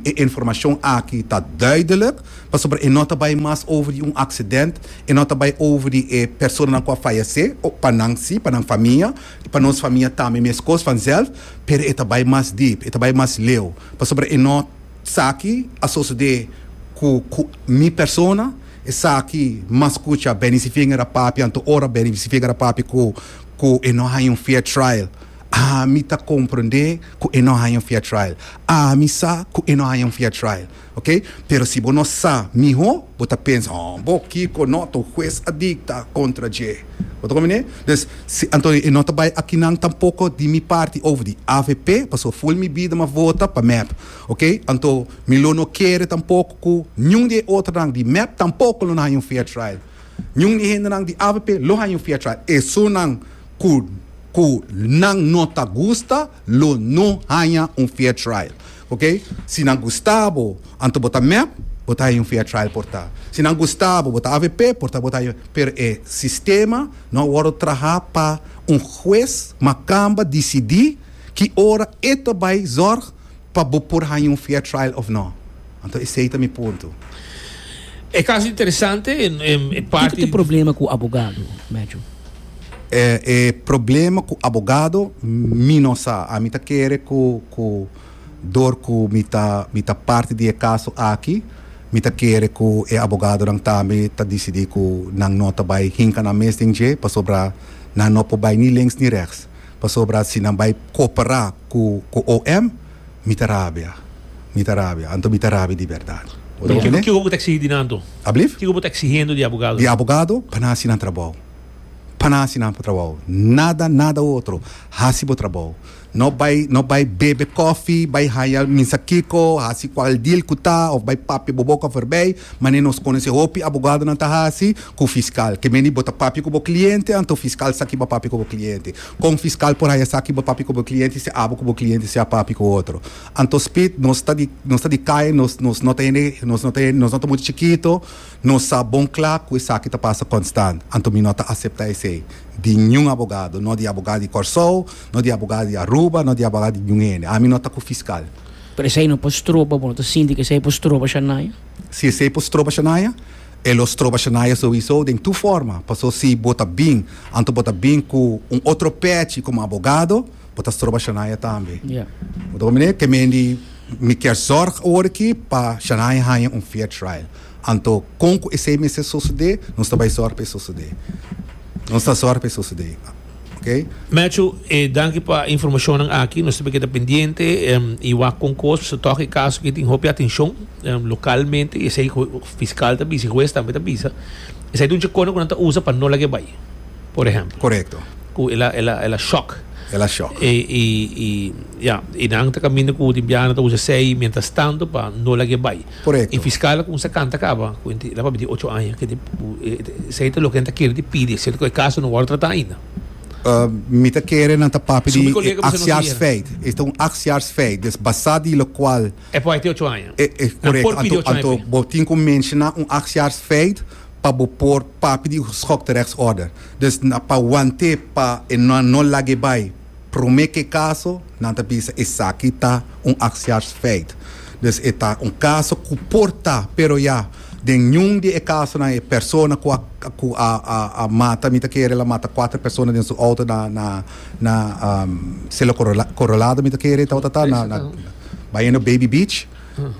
e informashon aki ta duidelik, pasobra e no ta bai mas over di un aksident, e no ta bai over di e personanan ku a fayesé, o pa nan si, pa nan famia, i pa nos famia tambe meskos vanzelf, pero e ta bai mas deep, e ta bai mas leu, pasobra e no sa ki a sosodé ku mi persona. Esaki mas scucha Benny Sivigner a papia anto ora Benny Sivigner a papia cu cu e no haya un fair trial ami ta comprende cu e no haya un fair trial ami sa cu e no haya un fair trial ok pero si bo no sa miho bo ta pensa oh bo Kiko no ta un huez a dicta contra dje bo ta comprende dus si anto e no ta bay akinan tampoco di mi parti over di avp pasobra full mi bida mi a vota pa mep. Ok, anto mi lo no kere tampoko ku niun di e otronan di mep tampoko lo na haña un fair trial. Niun di e hendenan di avp lo haña un fair trial. Esonan ku ku nan no ta gusta lo no haña un fair trial. Ok, si nan gusta bo anto bo ta mep bo ta haña un fair trial por ta. Si nan gusta bo bo ta avp por ta bo ta haña pero e sistema no a wòrdu traha pa un hues ma kamba disidi ki ora e ta bai zòrg pa bo por haña un fair trial of no. Anto esey ta mi punto. E caso interesante e parti. Kiko ta e problema cu abogado, Matthew? E problema cu abogado mi no sa. Ami ta kere cu cu dor cu mi ta mi ta parti di e caso aki mi ta kere cu e abogadonan tambe ta dicidi cu nan no ta bay hinca nan mes den dje pasobra nan no por bay ni links ni rechts. Pasobra si nan bai cooperá cu cu OM, mi ta rabia, mi ta rabia, anto mi ta rabia di berdad. Bo ta comprendé? Kiko bo ta exigí di nan anto? Ablief? Kiko bo ta exigendo di abogadonan? Di abogado, pa nan haci nan trabou. Pa nan haci nan trabou. Nada, nada otro. Haci bo trabou. No bai, no bai bebe cofi, bai haña minsa kiko, haci cual deal cu ta, of bai papia bo boca forbey, mane nos conoce hopi abogadonan ta haci, ku fiskal. Ke meni bo ta papia ku bo kliente anto fiskal sa ki bo a papia ku bo kliente. Kon fiskal por haña sa ki bo papia ku bo kliente si abo ku bo kliente si a papia ku otro? Anto spit nos ta di nos ta di kai nos nos no ta hende nos no ta hende nos no ta mucha chikito nos sa bon kla ku esaki ta pasa konstant anto mi no ta asepta esei di niun abogado no di abogado di Kòrsou no di abogado di Aruba no di abogado di niun hende ami no ta ku fiskal. Pero esei no por stroba bo no ta sinti ku esei por stroba Shania? Si esei por stroba Shania? E lo stroba Shania souiso den tur forma, paso si bo ta bin, anto bo ta bin cu un otro pechi como abogado, bo ta stroba Shania tambe. Bo ta comprende? Te mendi mi kier zorg awor aki pa Shania haya un fair trial. Anto con cu esey mester sosode, nos ta bay zorg pa e sosode. Nos ta zorg pa e sosode. Okay. Matthew, eh, danki pa informacionnan aki. Nos siempre queda pendiente um, y wak con cos. Se toca el caso que tiene hopi atención um, localmente. Y ese fiscal ta bisa, juez también ta bisa. Ese es un checono que no ta usa para no la que vaya, por ejemplo. Correcto. Cu el, el, el, el shock. El a shock. E, e, e, ya, e dan ta camino cu timbiana ta usa sei mientras tanto para no la que vaya. E fiskal a kuminsá kanta kaba ku e ta papia di ocho aña, ke esei ta loke nan ta kere di pidi, siento ku e kaso no wòrdu tratá ainda. Mi ta kere nan ta papia di e aksjaarsfeit. Es ta un aksjaarsfeit, des basá di lokual. E por hete ocho aña. Nan por pidi ocho aña pa e. Anto bo tin ku menshoná un aksjaarsfeit pa bo por papia di un schokterechtsorde. Dus pa want'é pa e nan no lag'é bai. Promé ke kaso, nan ta bisa esaki ta un aksiarsfeit. Dus e ta un kaso ku por ta, pero ya den niun di e kasonan e persona ku a ku a a a mata, mi ta kere el a mata kuater persona den su outo na na na Selo Korolado mi ta kere e tabata ta na na bayendo Baby Beach,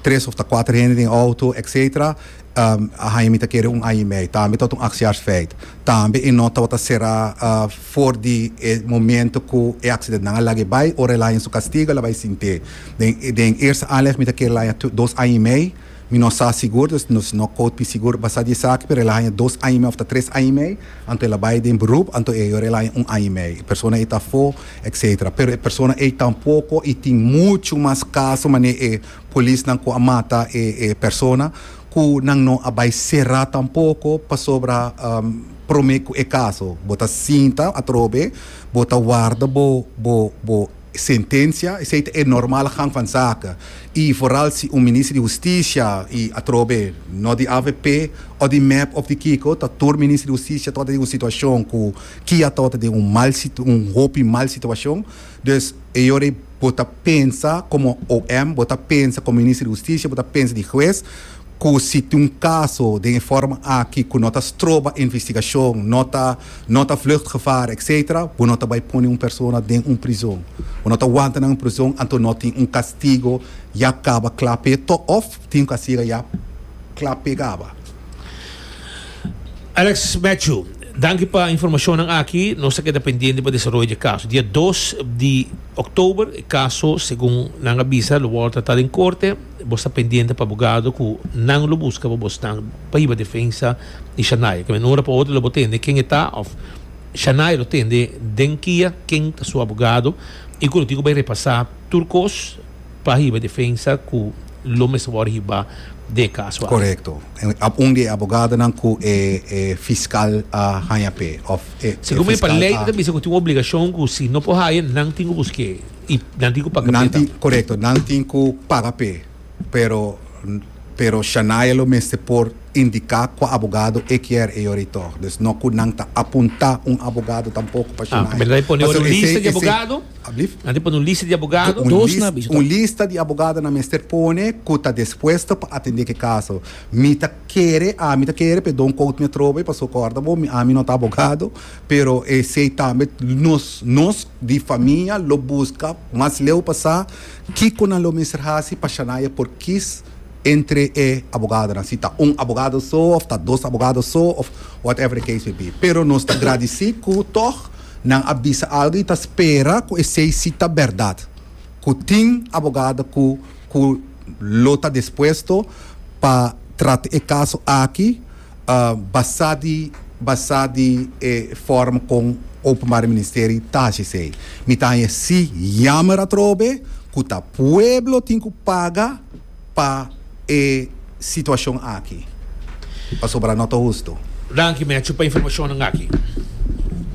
tres òf ta kuater hende den outo, etsetera. a haña mi ta kere un aña i mei, tambe tabata un aksiarsfeit, tambe e no tabata sera for di e momento ku e aksidentenan a lag'e bai, ora el haña su kastigu el a bai sint'é. Den den eerste aanleg mi ta kere el haña dos aña i mei, mi no sa sigur, dus nos no kout mi sigur basá di esaki, pero el a haña dos aña i mei òf ta tres aña i mei, anto el a bai den beroep, anto e ayora el a haña un aña i mei, e persona ei ta afó, etcétera. Pero e persona ei tampoko i tin muchu mas kaso manera e. Polisnan ku a mata e e persona ku nan no a bai será tampoko pasobra promé ku e kaso bo ta sinta atrobe bo ta warda bo bo bo sentensia esei ta e normal gang van zaken i vooral si un minister di hustisia i atrobe no di avp o di mep of di kiko ta tur minister di hustisia tabata den un situashon ku kia tabata den un mal un hopi mal situashon. Dus, e ora ei bo ta pensa komo OM, bo ta pensa komo Minister di Hustisia, bo ta pensa di hues, ku si tin un kaso den e forma aki ku no ta stroba investigashon, no ta no ta vluchtgevaar, etsetera, bo no ta bai pone un persona den un prizon. Bo no ta wanta nan prizon, anto no tin un kastigo ya kaba kla p'e tò òf tin un kastigo ya kla p'e kaba. Alex Matthew, danki pa informashonnan aki. Nos ta keda pendiente pa desaroyo di e kaso. Dia dos di Oktober e kaso segun nan a bisa lo wòrdu tratá den korte. Bo sta pendiente pa abogado ku nan lo buska pa bosnan pa hiba defensa di Shania. Kende ora pa otro lo bo tende ken e ta òf Shania lo tende den kia, ken ta su abogado i ku lo tin ku bai repasá tur kos. pa hiba defensa ku lo mester wòrdu hibá den e kaso aki. Korekto. Un di e abogadonan ku e fiskal a haña p'e òf e fiskal a. Segun mi, pa lei ta ta bisa ku tin un obligashon ku si no por haña nan tin ku busk'é i nan tin ku paga p'e tambe. Korekto, nan tin ku paga p'e, pero pero Shania lo mester por indiká kua abogado e kier e yora i tòg. Dus no ku nan ta apuntá un abogado tampoko pa Shania. Ah, ku mester ta pone yora un lista di abogado. A tin pone un lista di abogado? Un lista di abogado nan mester pone ku ta dispuesto pa atende ke kaso. Mi ta kere, ami ta kere, pe don't quote mi atrobe paso kòrda bo ami no ta abogado, pero esei tambe nos nos di famia lo buska mas leu pa sa kiko nan lo mester hasi pa Shania e por kis entre e abogadonan, si ta un abogado so of ta dos abogado so of whatever the case may be. Pero nos ta gradisi ku tòg. Nan a bisa algu y ta spera cu esey si ta berdad. Cu tin abogado cu cu lo ta dispuesto pa trata e caso aki basa di basa di e forma con Openbare Ministerie ta haci esey. Mi ta haña si yamer atrobe cu ta pueblo tin cu paga. pa e situacion aki pasobra no ta hustu. Danki Matthew pa informacionnan aki.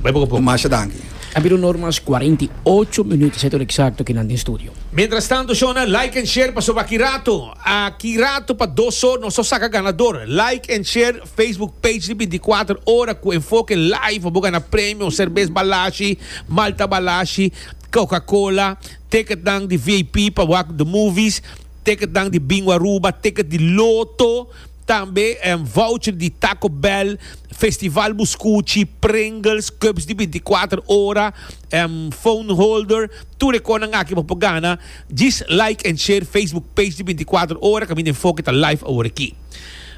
Bai boca poco. Masha danki. A habido normas cuarenta y ocho minuto setor exacto kinan den studio. Mientras tanto shona like en share pasobra aki rato aki rato pa dos or nos a saca ganador like en share Facebook page di binti kuater ora cu enfoke live bo gana premio cervez balashi malta balashi coca cola Ticketnan di vip pa wak the movies, ticketnan di Bingo Aruba, ticket di Loto, tambe voucher di Taco Bell, Festival Buscuchi, Pringles, cups di binticuater ora, phone holder, tur e conan aki bo por gana, djis like en share Facebook page di binticuater ora, caminda enfoke ta live awor aki.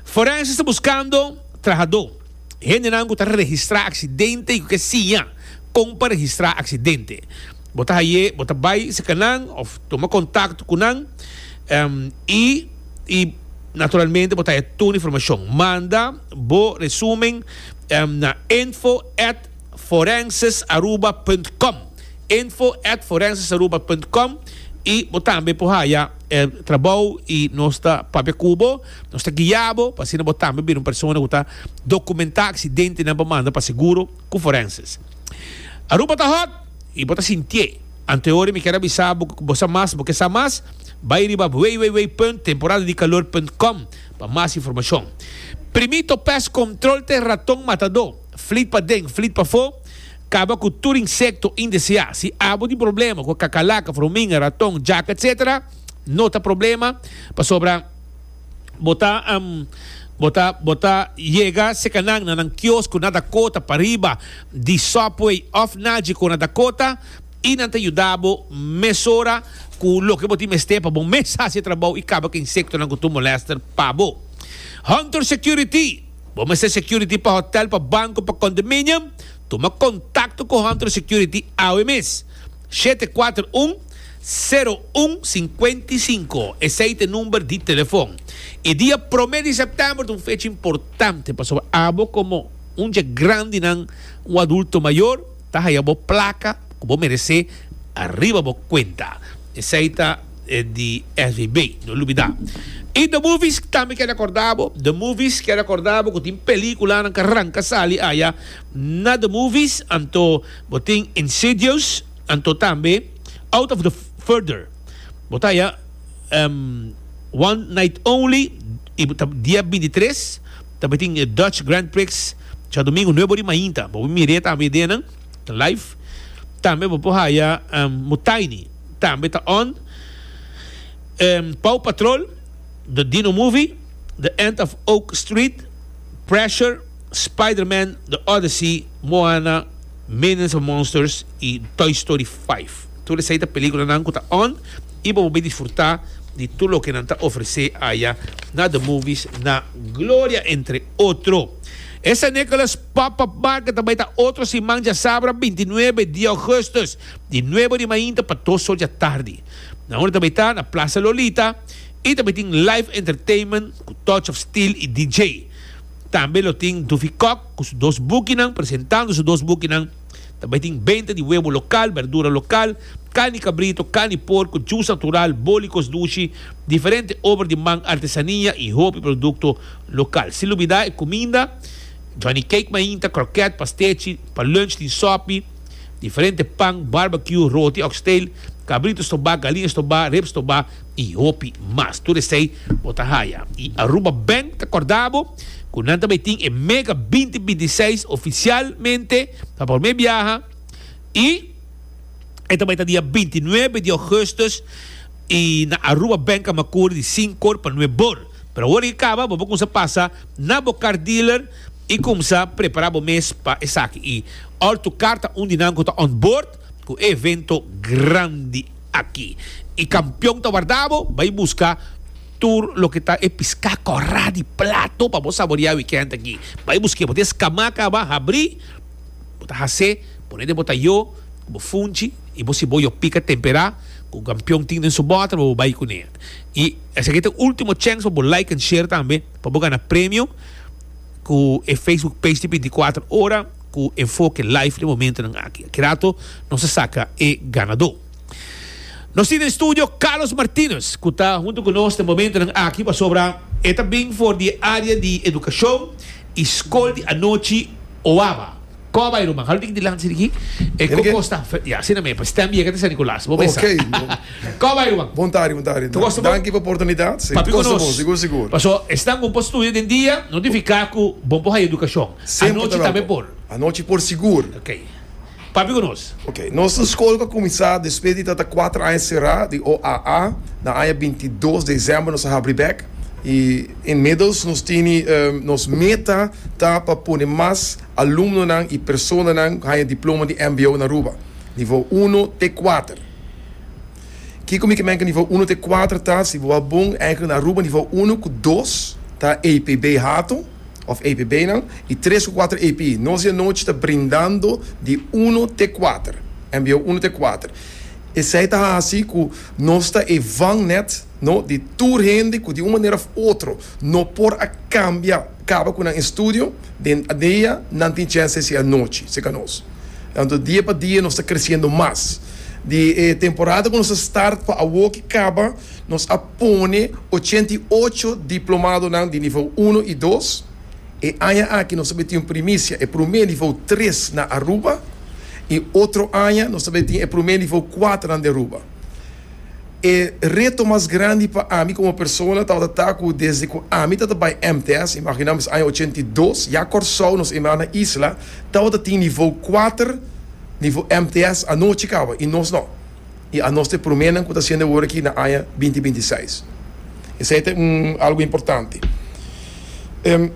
Forenses ta buscando trahador. hendenan ku ta registrá aksidente i ku ke siña kon pa registrá aksidente. Bo ta haye, bo ta bai serka nan òf tuma kontakto ku nan i i naturalmente bo ta haña tur informashon. Manda bo resumen na info at forenses-aruba punt com, info at forenses-aruba punt com i bo tambe por haña trabou i nos ta papia ku bo. Nos ta guia bo pa asina bo tambe bira un persona cu ta documentá accidentenan pa manda pa seguro cu forenses. Aruba ta hot y bo ta sintié. Antehoren mi kier avisa bo cu bo sa mas, bo ke sa mas? Bay riba www.temporadadicalor.com pa mas informacion. Primito Pest Control ta e raton matadó. Flit paden, flit pafó, caba cu tur insecto indeseá. Si abo tin problema cu e cacalaca, fruminga, raton, jaca etc. No ta problema pasobra. Bo ta Bo ta Bo ta yega seka nan na nan kios ku na da kota pa riba di Subway òf Naji ku na da kota i nan ta yuda bo mesora ku loke bo tin mester pa bo mes hasi e trabou i kaba ku e insektonan ku tur molèster pa bo. Hunter Security Bo mester security pa hotèl, pa banko, pa kondominium? Tuma kontakto ku Hunter Security awe mes. Shete kuater un, sero un, sinkuenta i sinku, esei ta e number di telefon. E dia promé di sèptèmber ta un fecha importante pasobra abo komo un dje grandinan, un adulto mayor, ta haya bo plaka ku bo meresé ariba bo kuenta. Esei ta e di SVB, no lubidá. I The Movies tambe kere akordá bo. The Movies kere akordá bo ku tin pelíkulanan ku a ranka sali aya. na the movies anto bo tin Insidious anto tambe Out of the Further bo ta haya One Night Only y ta dia binti tres ta be tin e Dutch Grand Prix djadomingo nuebe ora di mainta bo por mir'e tambe den nan ta live tambe bo por haya Mutiny tambe ta on Paw Patrol the Dino Movie The End of Oak Street Pressure. Spider-Man, The Odyssey, Moana, Minions and Monsters y Toy Story 5. Tur esey ta peliculanan cu ta on y bo por bay disfruta di tur loke nan ta ofrece aya na The Movies na Gloria entre otro. E San Nicholas Pop-Up Market ta bay ta otro siman djasabra binti nuebe di Augustus di nuebe ori mainta pa dos sol dja tardi. Na unda ta bay ta na Plaza Lolita y ta bay tin live entertainment cu Touch of Steel y DJ. Tambe lo tin Duffy Kok cu su dos bukinan presentando su dos bukinan. Tambe tin benta di webo local, berdura local, carne di cabrito, carne di porco, juice natural, bolicos dushi, diferente ober di man, artesania y hopi producto local. Sin lubida e cuminda, Johnny Cake mainta, croquet, pastechi, pa lunch tin sopi, diferente pan, barbecue, roti, oxtail, cabrito stoba, galina stoba, rib stoba, y hopi mas. Tur esey bo ta haya y Aruba Bank ta corda bo cu nan ta bay tin e Mega binti binti seis oficialmente pa prome biaha y e ta bay ta dia binti nuebe di Augustus y na Aruba Bank Camacuri di sincor pa nue bor. Pero awor e caba bo por cumsa pasa na bo car dealer y cumsa prepara bo mes pa esaki y ortu car ta un di nan cu ta on board. Cu e evento grandi aki. Y campeon ta warda bo, bay busca tur loke ta e pisca corra di plato pa bo saboria weekend aki. Bay busque bo des cama caba habri, bo ta hace, pone den bo tayo, cu bo funchi y bo ciboyo pica tempera cu campeon tin den su bota pa bo bay cune. Y esaki ta e ultimo chance pa bo like and share tambe pa bo gana premio cu e Facebook page di binticuatro ora. Cu enfoke live den momentonan aki. Aki rato nos a saca e ganador. Nos tin den studio Carlos Martinez cu ta hunto cu nos den momentonan aki pasobra e ta bin for di e area di educacion y scol di anochi Oaba. Como a bay ruman? Halo tiki dilanti sidiki. E Hel cu ke? costa? Fe- Ya, asina mey, pa stem yega ta San Nicolas. Bo mesa. Okay, bo. Como a bay ruman? Bon tardi, bon tardi. Cu costa bo? Danki pa oportunidad. Sí, Papi cu costa nos. bon, sigur, sigur. Paso esnan bon por studia den dia, notifica cu bon por haya educacion. Anochi tambe por. Anochi por sigur. Ok. Papia ku nos. Ok. Nos skol ta kuminsá despues di ta ta kuater aña será di OAA. Na aña binti dos di desèmber nos a habri bèk. I inmiddels nos tini nos meta ta pa pone mas alumnonan i personanan ku haña diploma di mbo na Aruba, nivou uno te kuater. Kiko mi ke menka nivou uno te kuater ta? Si bo a bon, na Aruba nivou uno ku dos ta APB hato. of APBnan y tres cu cuater AP. Nos di anochi ta brindando di uno te cuater, mbo uno te cuater. Esey ta haci cu nos ta e vangnet no di tur hende cu di un manera of otro no por a cambia caba cu nan estudio den dia nan tin chance hacía anochi cerca nos. Anto dia pa dia nos ta creciendo mas. Di e temporada cu nos a start pa awo cu caba nos a. pone ochenta i ocho diplomadonan di nivou uno i dos. E aña aki nos ta bin tin un primisia, e promé nivou tres na Aruba i otro aña nos ta bin tin e promé nivou kuaternan di Aruba. E reto mas grandi pa ami komo persona tabata ta ku desde ku ami ta ta bai MTS, imaginá mes aña ochenta i dos, ya Kòrsou, nos e nan na isla, tabata tin nivou kuater, nivou MTS anochi kaba i nos no. I a nos ta e pruménan ku ta hasiendo awor aki na aña binti binti seis. Esei ta un algu importante. Em,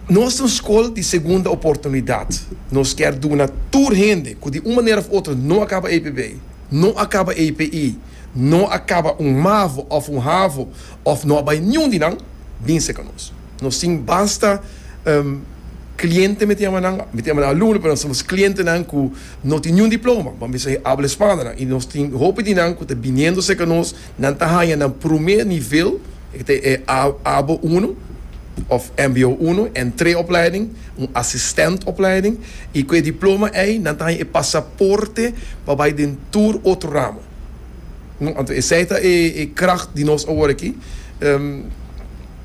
Nos ta un skol di segunda oportunidat. Nos kier duna tur hende ku di un manera òf otro no a kaba EPB, no a kaba APE, no a kaba un mavo òf un havo òf no a bai niun di nan, binse ku nos. Nos tin basta, em, klientenan, mi ta yama nan alumno, pero nan ta sama nos klientenan ku No tin niun diploma, ma mester e habla Spana, i nos tin hopi di nan ku ta biniendo serka nos, nan ta haña nan promé nivel, e ta e abo uno òf mbo uno, entree opleiding, un asistènt opleiding, i ku e diploma ei nan ta haña e pasaporte pa bai den tur otro ramo. Anto esei ta e kragt di nos awor aki.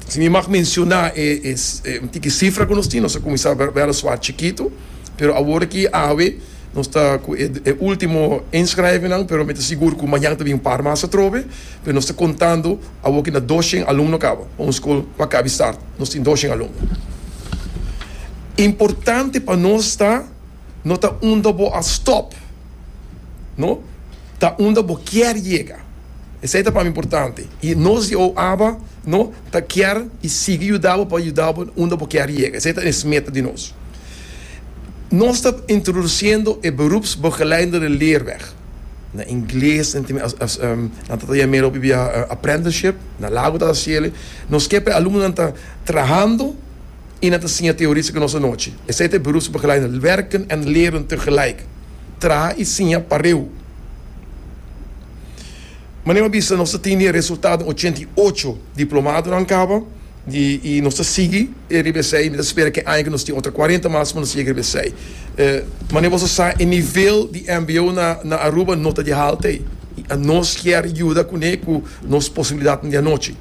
Si mi mag mensioná e un tiki sifra ku nos tin, nos a kuminsá bèra suachi chikitu. Pero awor aki awe nos ta cu e ultimo inschrijvennan, pero mi ta sigur cu mañan ta bin un par mas atrobe, pero nos ta contando awor aki na dos shen alumno caba pa un school cu a cabi start, nos tin dos shen alumno. Importante pa nos ta no ta unda bo a stop, no, ta unda bo kier yega, esai ta pa mi importante y nos di OABA, no. Ta kier y sigui yuda bo pa yuda bo unda bo kier yega. Esey ta es meta di nos. Nos ta introduciendo e beroepsbegeleidende de leerweg. Na ingles nan tin nan trata yam'e lopi via apprenticeship, na Lago ta haci el'e. Nos kier pa e alumnonan ta trahando y nan ta siña teoristico nos anochi. Esey ta e beroepsbegeleidende, werken en leren tegelijk. Traha y siña pareu. Manera mi a bisa nos ta tin di e resultado den ochenta i ocho diplomadonan kaba di i nos ta sigui e riba esei. Mi ta spera ke aña ke nos tin otro cuarenta mas pa nos yega riba esei. Manera boso sa e nivel di mbo na na Aruba no ta di halta ei i nos kier yuda kuné ku nos posibilidatnan di anochi.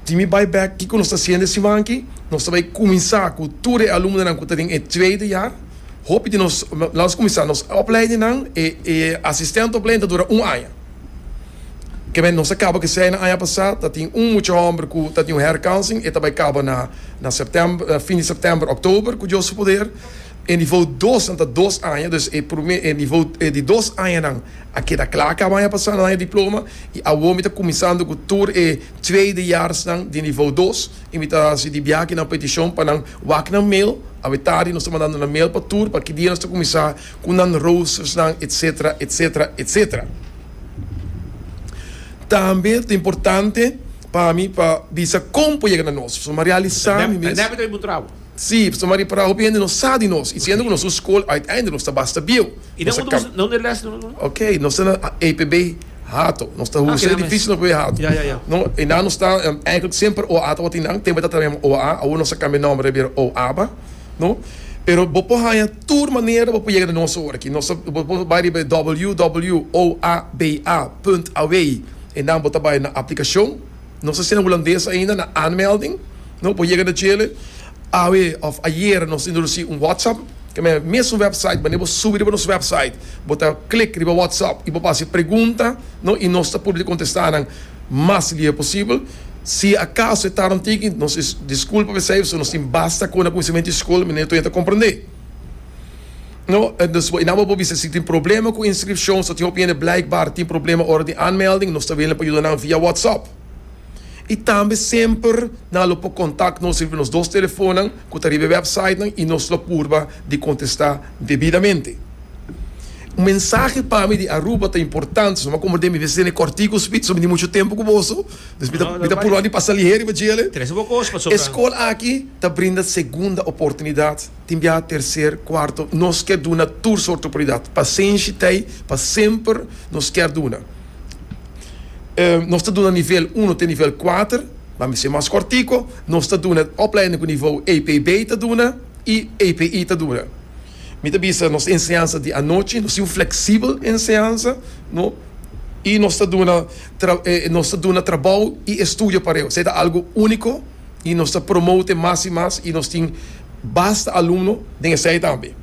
Si mi bai bek kiko nos ta hasiendo e siman aki, nos ta bai kuminsá ku tur e alumnonan ku ta den e trede yar, Hopi di nos lansa kuminsá nos opleidinan, e e asistente opleiding ta dura un aña. Kende nos a kaba k'esei na aña pasá ta tin un mucha hòmber ku ta tin un hèrkansing, e ta bai kaba na na sèptèmber, fin di sèptèmber, òktober ku Dios su poder. E nivou dos nan ta dos aña, dus e promé e nivou e di dos añanan a keda kla, a kaba aña pasá nan a haña diploma i awor mi ta kuminsando ku tur e tweede jaars nan di nivou dos. Invitasí di biaha na petishon pa nan wak nan mail. Awe tardi nos ta mandando nan mail pa tur pa ki dia nos ta kuminsá ku nan roostersnan etc. Etc. Etc. Tambe ta importante pa mi pa bisa kon por yega na nos. So, mi a realisá mi mes. Sí, Pastor Mario, para hopi hende no sa di nos y si hende cu nos un school uiteindelijk nos ta basta bieu. Y den un dos, dónde les lo no? Ok, nos ta na APB Hato, nos ta huser edificio na APB Hato. No, einan nos ta eigenlijk semper oa tabata di nan, tempo ei ta trabayanan oa, awor nos a cambia nomber a bira oaba, no, pero bo por haya tur manera bo por yega di nos awor aki, nos ta, bo por bay riba www.oaba.away, einan bo ta bay na aplicacion. Nos a sende hulandes ainda na aanmelding no por yega na Chile. Awe of ayer nos introduci un WhatsApp ke mester mesun website manera bo subi riba nos website bo ta klik riba WhatsApp y bo hasi pregunta no y nos ta por di contesta nan mas lihe posibel. Si acaso e tard un tiki nos disculpa pa esey pasobra nos tin basta cona conocimiento di school manera toia ta comprende. I nan bo por bisa si tin problema ku inskripshon. So tin hopi hende blijkbaar tin problema ora di aanmelding. Nos ta willing pa yuda nan via WhatsApp. I tambe semper nan lo por kontak nos riba nos dos telefonnan ku ta riba e wèpsaitnan i nos lo purba di kontestá debidamente. Un mensahe pa mi di Aruba ta importante, so mi a komprendé mi mester tene kòrtiku ku Smit, so mi tin muchu tempu ku boso. Dus mi ta mi ta purba di pasa lihé riba djele. E skol aki ta brinda segunda oportunidat. Tin biaha tercer, cuarto, nos ke duna tur sort oportunidat. Pasenshi t'ei pa semper nos ker duna. Nos ta duna nivel uno te nivel kuater, ma mi ser mas kortiko, nos ta duna opleidingen ku nivou APB ta duna i APE ta duna. Mi ta bisa nos enseñansa di anochi, nos tin un fleksibel enseñansa, no, i nos ta duna nos ta duna trabou i estudio pareo. Esei ta algu úniko. y nos ta promote mas y mas y nos tin basta alumno den esey tambe.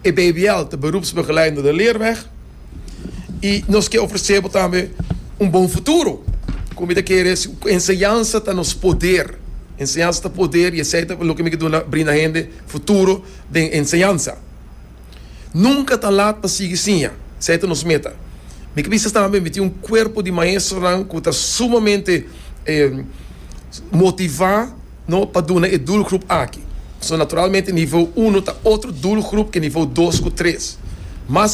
E BBL ta Beroepsbegeleidende de Leerweg y nos ke ofrece bo tambe un bon futuro. Cu mi ta kere es cu enseñansa ta nos poder, enseñansa ta poder y esey ta loke mi ke duna brinda hende futuro den enseñansa. Nunka ta lat pa sigui siña. Esei ta nos meta. Mi ta bisa tambe mi tin un kuerpo di maestronan ku ta sumamente motivá pa duna e doelgroep aki. So naturalmente nivou uno ta otro doelgroep ke nivou dos ku tres. Mas.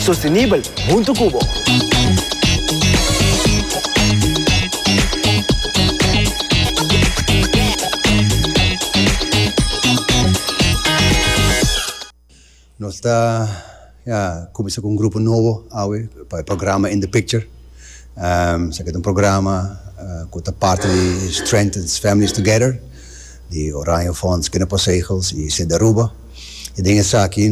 Sostenibel huntu cu bo. Nos ta cuminsa cu un grupo nobo awe pa e programa In The Picture. Esaki ta un programa cu ta parti di Strengthens Families Together di Oranje Fonds Kinderpostzegels y Sint Aruba. Y den esaki.